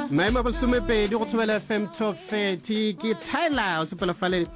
maemo a bolesomepedi go thobela fm 1230 ke tyler o sepela fale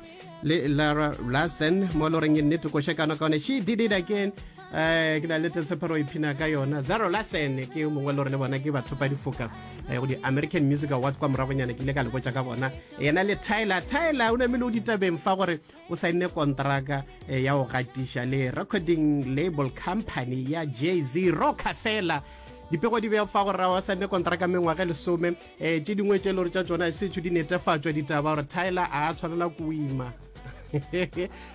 le lara larson mo lo reng e nnete koša kana kaone she did it again um ke na le telsepero iphina ka yona zero larson ke yo mongwe le gore le bona ke batho ba difoka eh, go di-american music awards kwa moragonyana ke ile ka le botsa ka bona yena le tyler tyler o namele o ditabeng fa gore o saenne kontraka eh, ya go gatiša le recording label company ya jz rocker fela dipego di beya fa gore wa saenne kontraka mengwaga lesome um eh, tse dingwe tse e le gore tša tsona e setšho di netefatšwa ditaba gore tyler a tshwanela ko o ima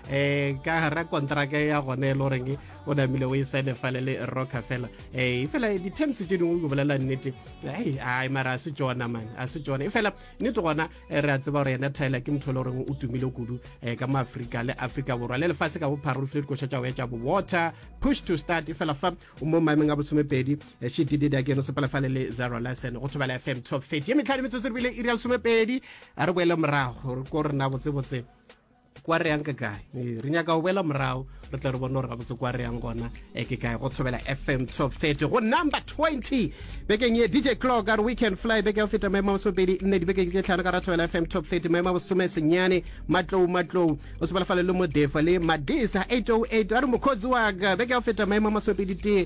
eh ka gara kontraka ya gone le goreng o namile o e sane fale le rocker fela eh e fela di-terms tse dingwe ke bolela nnete ai ai mara a se tsona man a se tsona e fela nnete gona e re a tseba gore yena tyler ke motho e le goreng o tumile kudu um ka mo afrika le afrika borwa le lefase ka bophara o lefile dikoša tša go etša bowater push to start e fela fa o mo maemeng a botshomepedi eh, she did it again o sepela fale le zero lesson go thobela fm top 30 ye metlhadi metsotso re bile iri ya lesomepedi a re boele morago ko rena botsebotse kwa re yang ke kae ee, re nyaka go boela morago re tle re bone gore gabotse kwa re yang gona e ke kae go thobela fm top 30 go number 20 bekeng ye dj clock are weekend fly beke ya go feta maemo a bosomepedi nne dibekeng tse tlhano ka ra thobela fm top 30 maemo a bosome senyane matlou matlou o sebalafale le modefa le madisa 808 a re mokgotsi wa ka beke ya go feta maemo a masomepedi tee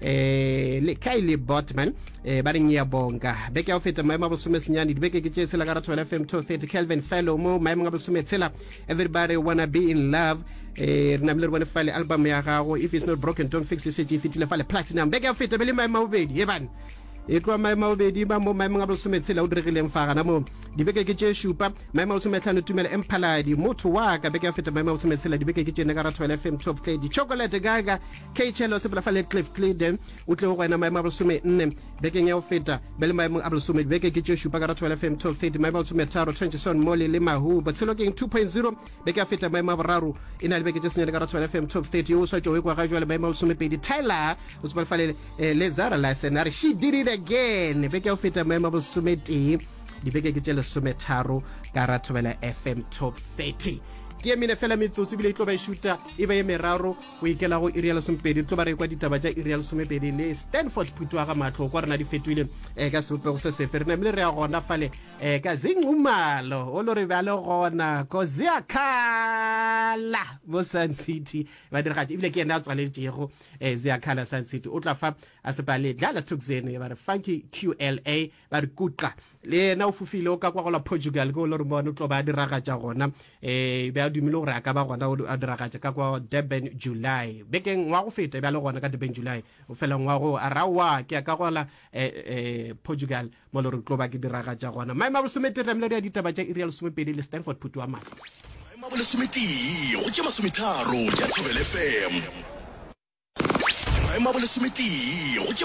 eh le Kylie Botman eh ba reng ya bonga beke ya go feta maemo a bolesome senyane dibeke ke tše tshela ka ratho fm 230 kelvin fellow mo maemong a bolesome tshela everybody wanna be in love eh re namile re bone fale album ya gago if it's not broken don't fix it šetše e fetile fale platinum beke ya go feta be le maemo a bobedi e bane e tloa maemo a bobedi ba mo maemong a bolesome tshela o diregileng fa gana moo dibeke ke tše šupa maemo a bolesome tlhano tumela emphaladi motho wa ka beke ya go feta maemo a bolesome tshela dibeke ke tšene ka ratho fm top tledi chocolate gaga Kheychelo Sepolafale Cliff Cleide o tlego go ena maemo a bolesome nne bekeng ya go feta be le maemong a bolesome dibeke ke tše šupa ka Rathabela FM 1230 maemo a bolesome tharo Trenchison Molly le Mahu Botshelo Keng 2.0 beke ya feta maemo a boraro e na le beke tše senyane ka Rathabela FM 1230 yo o swatšogo kwa ga jwale maemo a bolesome pedi Tyler o sepolafale eh, le Zara Larsen a re she did it again beke ya go feta maemo a bolesome tee dibeke ke tše lesome tharo ka Rathabela FM 1230 ke emine fela metsotso ebile e tlo ba e šuta e ba e meraro go ikela go iri ya lesomepedi tlo ba re kwa ditaba tša iri ya lesomepedi le stanford phutu wa ga matlho kwa rena di fetoile um ka sebopego se sefe re namile re ya gona fale um ka zingumalo o lo re bjale gona koziakala mo sun city ba diragatša ebile ke ene a tswaletšego um ziakala sun city o tla fa a sepale dlala tuxen ba re funky qla ba re kuqa le yena o fofile o ka kwa gola portugal ke o le re bone o tlo ba a diragatša gona um be a dumile gore a ka ba gona a diragatša ka kwa durban july bekeng wa go feta e be a le gona ka durban july o felang wa go a rawa ke ya ka gola um portugal mo le re tlo ba ke diragatša gona maemo a bosometere mladi ya ditaba tša irial somepedi le stanford phutu wa madi maemo a bolesometee go tše masometharo tša thobel fm maemo a bolesometee go tše